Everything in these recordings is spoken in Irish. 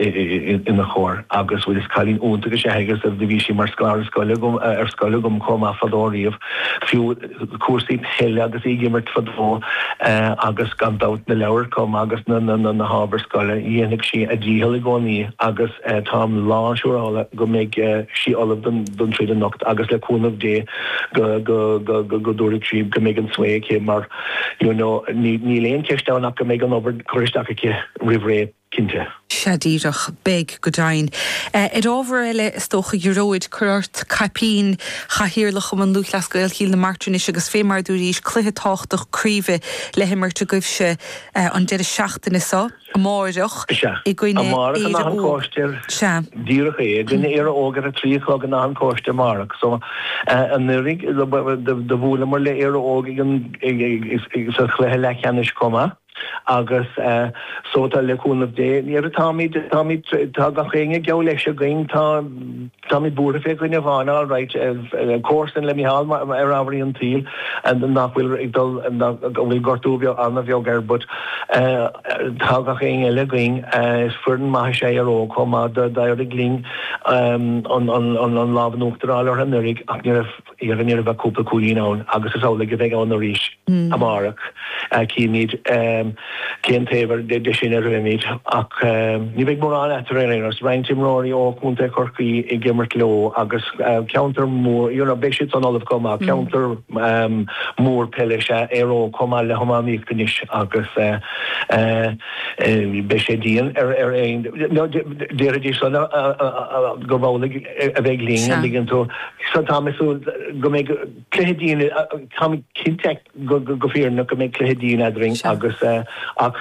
ina chomhair. Agus bhuel, is cailín iontach is ea í agus do bhí sí mar scoláire agam, ar scoil agam chomh maith fadó riamh. Fiú cúrsaí peile agus í ag imirt fadó agus gan dabht na leabhair chomh maith agus na, na, na hábhair scoile, dhéanfadh sí a dícheall i gcónaí agus táim lán siúrála go mbeidh sí ullamh don, don troid anocht agus le cúnamh Dé go, go, go, go, go dtabharfaidh sí, go mbeidh an svae aici mar you know, níl aon cheist ann ach go mbeidh an obair curtha isteach aici roimh ré. cinnte. Sea díreach. Beidh, go deimhin. Ar ábhar eile, is dócha, a Ghearóid, cuir ort caipín chathaoirleach Chumann Lúthchleas Gael Chill na Martra anois agus fé mar a dúraís, cluiche tábhachtach craoibhe le himirt agaibhse an deireadh seachtaine so, amárach, Sea. i gcoinne Éire Óg. Amárach in Áth an Chóiste. Sea. Díreach é. I gcoinne Éire Óg ar a trí a chlog in Áth an Chóiste amárach. So, anuiridh, do bhuaileamair le Éire Óg ag an, sa chluiche leathcheannais chomh maith. Agus so, tá, le cúnamh Dé, níor, táimid, táimid, tá gach éinne geall leis againn, tá, táimid buartha fé dhuine amháin, alright, comharsan le Micheál ar ámharaí an tsaoil nach bhfuil ag dul, go bhfuil gortú beag, an-bheag air but tá gach éinne eile againn, is foireann maith is ea Éire Óg chomh maith, d'éirigh linn an, an, an, an lámh in uachtar a fháil orthu anuraidh ach ní raibh. eadrainn, ní raibh ach cúpla cúilín ann, agus is amhlaidh a bheidh ann arís amárach. Cífimid cén taobh de sin a rithfimid, ach ní bheidh mórán eatarthu ar aon nós. Roinnt imreoirí ó chontae Chorcaí ag imirt leo agus ceantar mór, you know, beidh siadsan ullamh chomh maith. Ceantar mór peile is ea Éire Óg, chomh maith le hiománaíocht anois, agus beidh sé dian ar aon, déarfaidís san am, gurb amhlaidh a bheidh linn, an dtuigeann tú. So táim ag súil go mbeidh cluiche dian, táim cinnte go fírinneach go mbeidh cluiche dian eadrainn agus ach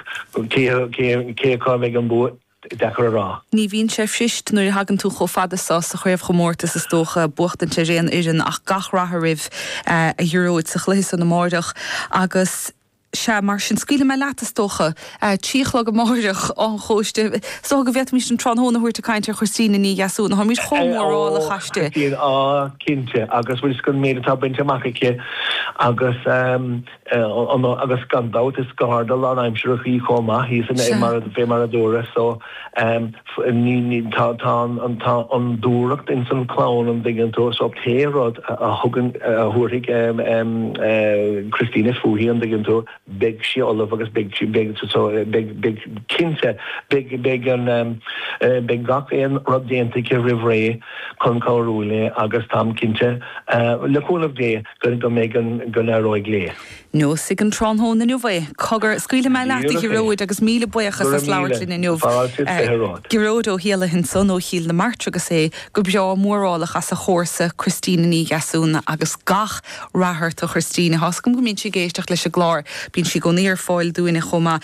cé acu go mbeidh an bua, deacair a rá. Ní bhíonn sé fuirist nuair a thagann tú chomh fada so sa chraobhchomórtas, is dócha, buachtaint ar aon fhoireann ach gach rath oraibh a Ghearóid sa chluiche san amáireach agus, Sea, mar sin, scaoilfidh mé leat, is dócha, a trí a chlog amáireach, Áth an Chóiste. Is dócha go bhféadfaimis an tráthnóna a thabhairt ag caint ar Christina Ní Dheasúna. Táimid chomh Sea, mórálach aisti. Á, cinnte, agus bhfuil a fhios agat, an méid atá bainte amach aici, agus an, agus gan dabht, is garda lánaimsireach í chomh maith, thíos in, Sea. mar a, fé mar a dúras, so. Tá an dúthracht ins an chlann, an dtuigeann tú, so pé rud a thugann, a thabharfaidh Christina fúithi, an dtuigeann tú, beidh sí ullamh agus beidh, so beidh, cinnte, beidh an, beidh gach aon rud déanta aici roimh ré chun cabhrú léi agus táim cinnte, le cúnamh Dé, go mbeidh an, go n-éireoidh léi. Neosfaidh an tráthnóna inniu é. Cogar, scaoilfidh mé leat, a Ghearóid, agus míle buíochas as labhairt linn inniu. Gearóid Ó hÉalaithe ansan ó Chill na Martra agus é go breá mórálach as a chomharsa Christina Ní Dheasúna agus gach rath ort a Christina. Tá 's agam go mbíonn sí ag éisteacht leis an gclár. Bíonn sí i gcónaí ar fáil dúinne chomh maith.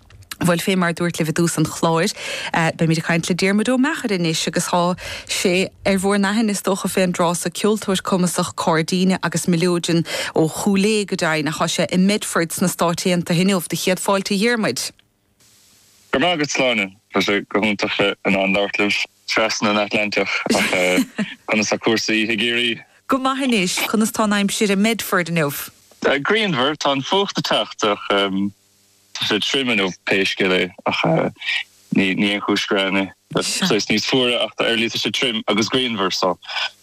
Bhuel, fé mar a dúirt libh i dtús an chláir, beimid ag caint le Diarmuid Ó Meachair anois agus tá sé ar bhúr n-aithne, is dócha, fén dtráth so ceoltóir cumasach cairdíne agus mileoidean ó Chúil Aodha go deimhin, ach tá sé i mBedford sna Stáit Aontaithe inniu. Do chéad fáilte, a Dhiarmuid! Go raibh maith agat, Sláine! Tá sé go hiontach bheith in ann labhairt libh trasna an Atlantach, ach conas tá cúrsaí i gCiarraí? Go maith anois, conas tá an aimsir i mBedford inniu? Grianmhar, tá an fuacht ag teacht, ach. Sé tirim inniu, pé scéal é, ach ní haon chúis gearáin é. Saghas níos fuaire, ach ar a laghad tá sé tirim agus grianmhar so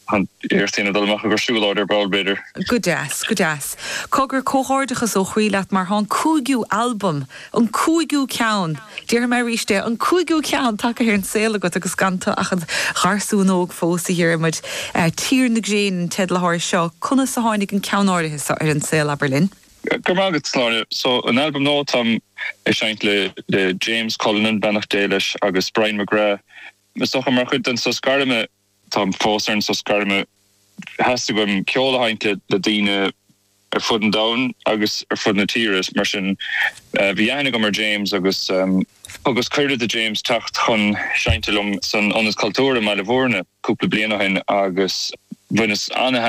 iarracht a dhéanamh dul amach i gcomhair siúlóid ar ball, b'fhéidir. Go deas, go deas. Cogar, comhghairdeachas ó chroí leat mar tá an cúigiú albam, an cúigiú ceann, déarfaidh mé arís é, an cúigiú ceann tagtha ar an saol agat agus gan tú ach id gharsún óg fós, a Dhiarmuid. Tír na nGréin an teideal atá air seo. Conas a tháinig an ceann áirithe seo ar an saol, abair linn? Go raibh maith agat, Sláine. So, an albam nua táim ag seinnt le James Cullinan, beannacht Dé leis, agus Brian McGrath, is dócha, mar chuid den sos gairme. Táim fós ar an sos gairme. Theastaigh uaim ceol a sheinnt le daoine ar fud an domhain agus ar fud na tíre, mar sin bhí aithne agam ar James agus thugas cuireadh do James teacht chun seinnt liom san Ionad Cultúir i mBaile Mhúirne cúpla bliain ó shin agus bhaineas an-thaitneamh